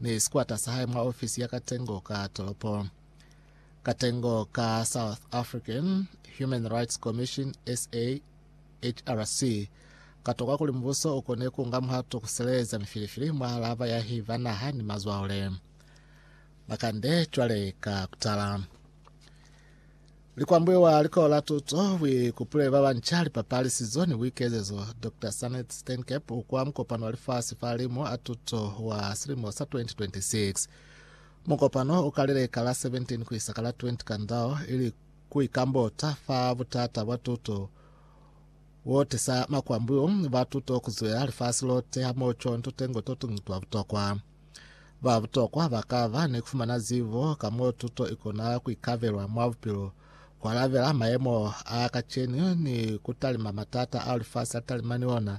ni sikwata sa hae mwa ofisi ya katengo ka tolopo. Katengo ka South African Human Rights Commission, SAHRC, katokwa kuli mubuso ukone kuunga muhato kusileeza mifilifili mwa laba yahi ba naha ni mazwaole. Makande cwale ka kutala. Likwambuyo wa likola la tuto bwi kupuleli ba banca lipapalisizo ni buikezezo Doctor Sanet Steenkep kwa mukopano wa lifasi fa limu a tuto wa silimo sa 2026. Mukopano ukalile ka la 17 kuisa ka la 20 Kandao ili kuikambota fa butata bwa tuto bo tisa makwambuyo ba tuto kuzwela lifasi lote hamoho conto tengo totuñi twa butokwa. Ba butokwa ba ka ba ni ku fumana zibo ka mo tuto i kona ku ikabelwa mwa bupilo, ku alabela mayemo a kacenu ni ku talima matata ao lifasi la talima ni ona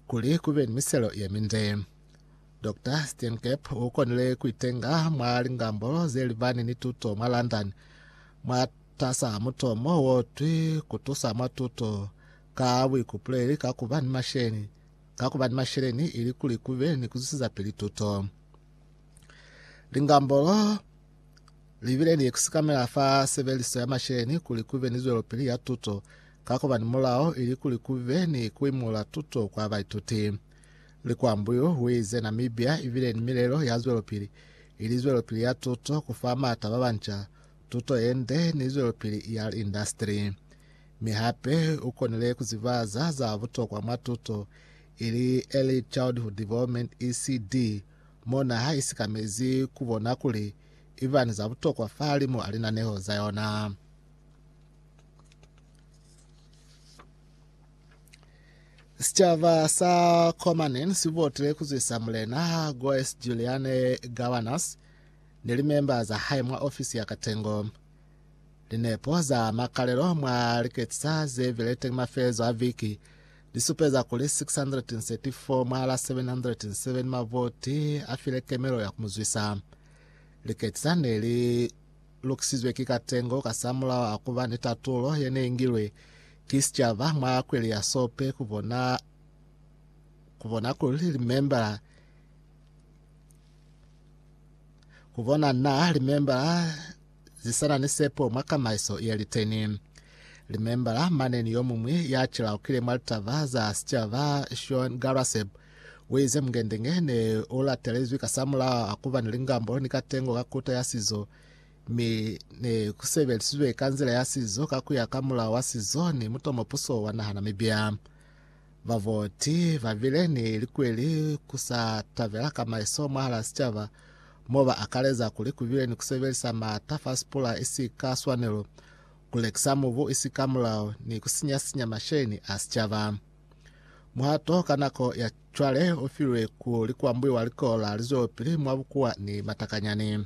kuli ku be ni miselo ye minde. Dr. Steenkamp u konile ku itenga mwa lingambo ze libani ni tuto mwa London mwatas'a mutomo wo twi Ku Tusa mwa Tuto ka Buikupuleli ka ku ba ni Masheni, ka kuba ni masheleni ilikuli kube ni kuzwisizapili tuto. Lingambolo libile ni kusikamela fa sebeliso ya masheleni kuli kube ni zwelopili ya tuto ka kuba ni mulao ilikuli kube ni kuimula tuto kwa baituti. Likwambu yu uize, Namibia ibile ni milelo ya zwelopili, ili zwelopili ya tuto, kufa maata babanca tuto yende, ni zwelopili ya indastri. Mi hape u konile ku ziba za za butokwa mwa tuto ili Early Childhood Development, ECD, mo na ha isikamezi ku bona kuli i ba ni za butokwa fahalimu a linaneho za yona. Sicaba sa Komanen si votile ku zwisa Mulena Goes Juliane Gawanas ni limemba za hae mwa ofisi ya katengo. Linepo za makalelo mwa liketisa ze bile teñi mafelelezo a viki li supeza kuli 634 mwa la 707 mavoti a file kemelo ya ku mu zwisa. Liketisa ne li lukisizwe ki katengo kasamulaho a ku ba ni tatulo ye ne i ngilwe ki sicaba mwa kweli ya Sope ku bona ku bona kuli limembala ku bona na limembala zisana ni sepo mwa kamaiso ye liteni. Limembala mane ni yomuñwi ya cilaukile mwa litaba za sicaba, Sean Garaseb, uize mungendenge ne ulatelezwi kasamulaho a kuba ni lingambo ni katengo ka kuta ya sizo, mi ne kusebelisizwe ka nzila ya sizo ka kuya ka mulao wa sizo ni mutomopuso wa naha Namibia. Baboti babile ni likweli ku sa tabela ka maiso mwahal'a sicaba, mo ba akaleza kuli ku bile ni ku sebelisa m'ata fa sipula isi ka swanelo, ku lekisa mubu isi ka mulao, ni ku sinya-sinya masheni a sicaba. Muhato ka nako ya cwale u filwe ku likwambuiwa likolo la lizwelopili mwa bukuwa ni matakanyani.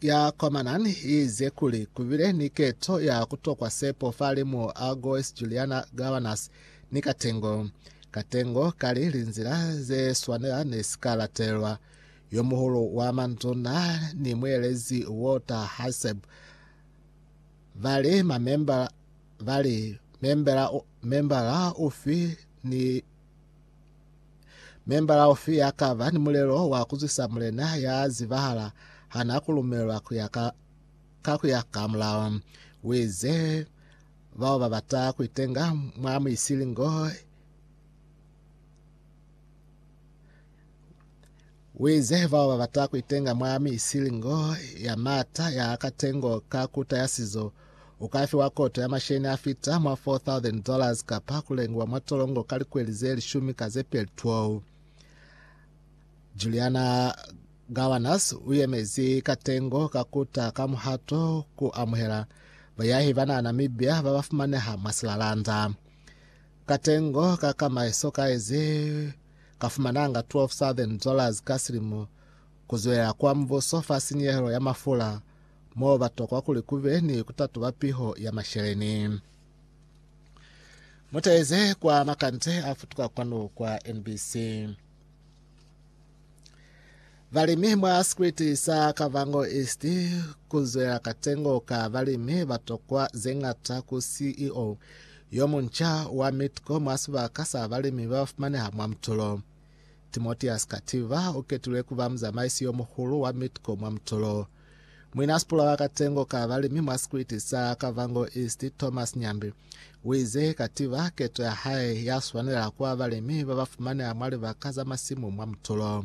ya kwa Manan iize kuli kubile ni keto ya kutokwa sepo falimu a Goes Juliana Governas ni Katengo. Katengo kali linzila ze swanela ne si ka latelwa. Yomuhulu wa manduna ni muelezi Walter Haseb vali mamembala vali membela membala ufi ni Membala ufi ya ka ba ni mulelo wa ku zwisa mulena ya zibahala ha na ku lumelwa ku ya ka, ka ku ya ka mulao. U ize, Bao ba bata ku itenga mwa muisilingo Wize, Bao babata kuitenga mwa mi isili ngo ya maata ya katengo ka kuta ya sizo, ukafiwa koto ya masheni afita mwa $4,000 kapa kulengiwa mwa tolongo ka likweli ze lishumi ka zepeli 12. Juliana Gowanus uyemezi katengo ka kuta ka muhato ku amuhela bayahi bana Namibia babafumaneha mwa silalanda. Katengo ka kama sokaezi Ka fumananga 12,000 dollars ka silimo ku zwelela kwa mubuso fa sinyehelo ya mafula, mo ba tokwa kuli ku be ni ku tatuba piho ya masheleni. Mu taeze kwa makande a futuka kwanu kwa NBC. Balimi mwa sikwiti sa Kavango East ku zwela katengo ka balimi ba tokwa ze ñata ku CEO yo munca wa Midco mwa sibaka sa balimi ba fumaneha mwa Mtolo. Timoteus Kativa u ketilwe ku ba muzamaisi yo muhulu wa Midco mwa Mtolo. Muinasipula wa katengo ka balimi mwa sikwiti sa Kavango East Thomas Nyambi u ize Kativa keto ya hae ya swanela ku ba balimi ba ba fumaneha mwa libaka za masimu mwa Mtolo.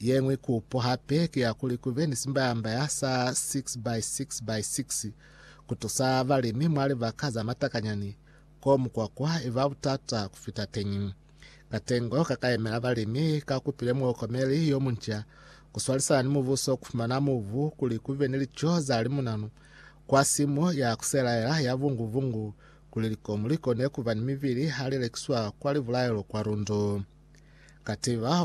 Yeñwi kupo hape ki ya kuli kube ni simbayambaya sa 6 by 6 by 6 kutusa balimi mwa libaka za matakanyani ko mukwakwa iba butata kufita teñi. Katengo kakayemela balimi kakupile muokomeli yomunca kuswalisana ni mubuso kufumana mubu kuli kube ni lico za limunanu kwa simu ya kuselaela ya vungu-vungu kuli likomu likone kuba ni mibili hali lekiswa kwa libulaelo kwa lundu. Katiba